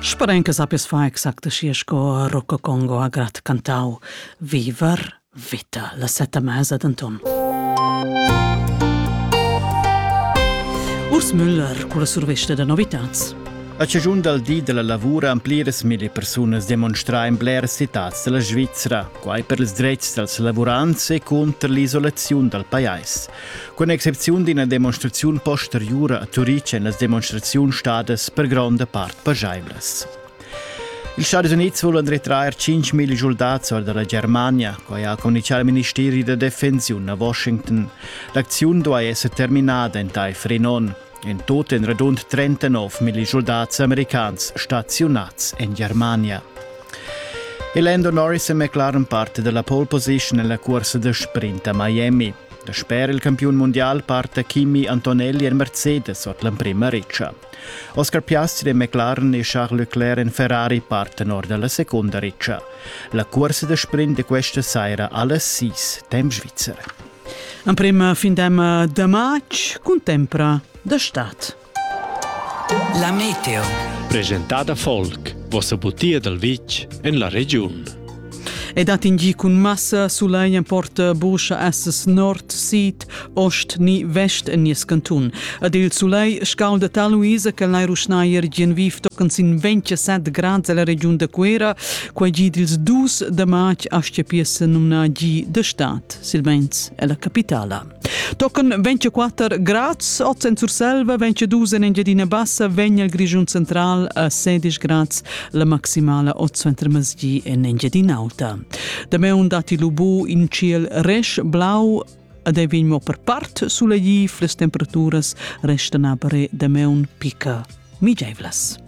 Speren che sappes fa exact schi sco Rocco Congo ha grat cantau Viver vita la setta mesa d'Anton. Urs Müller con la surveste da novitats. A cigiun dal di della lavura han pliras mille persunas demonstrà in blers citats della Svizzera, quai per ils dretgs dals lavurants e contro l'isolaziun dal pajais. Cun excepziun d'ina demonstraziun posteriura a Turitg èn las demonstraziuns stadas per gronda part pajaivlas. Ils Stadis Unids vulan retrair 5.000 soldats or da la Germania, quai ha communitgà il ministeri da defensiun a Washington. L'acziun duai esser terminada entaifer in onn. In tut en radund 39.000 soldats americans staziunads en Germania. E Lando Norris è McLaren parte della pole position nella corsa da sprint a Miami. Dasper il campiun mundial parta Kimi Antonelli en Mercedes ord l'emprima ritscha. Oscar Piastri e McLaren e Charles Leclerc en Ferrari partan or da la secunda ritscha. La cursa da sprint di questa saira alles sis, temp svizzer. Emprima fin demma da matg contempra da stad. La meteo. Presentada folk, vossa butia dal vitg en la regiun. E dat in gi cun massa sulegn porta buscha esses nord, sid, ost ni vest en nies cantun. Ad il sulei scalda tal Luisa che lai ruschnaier gien viv tocan sin 27 grad la regiun da Cuera, quei gi dils dus da matg astia piessa numna gi de stat, silvens è la capitala. Tochen 24 grads oz en Surselva, 22 en Engiadina Bassa, vegn il Grischun central a 16 grads, la maximala oz entre Masgi en Engiadina Alta. Dameun dati lubu in ciel resch blau ed ei vegn mo per part sulegif, las temperaturas restan aber dameun picca migeivlas.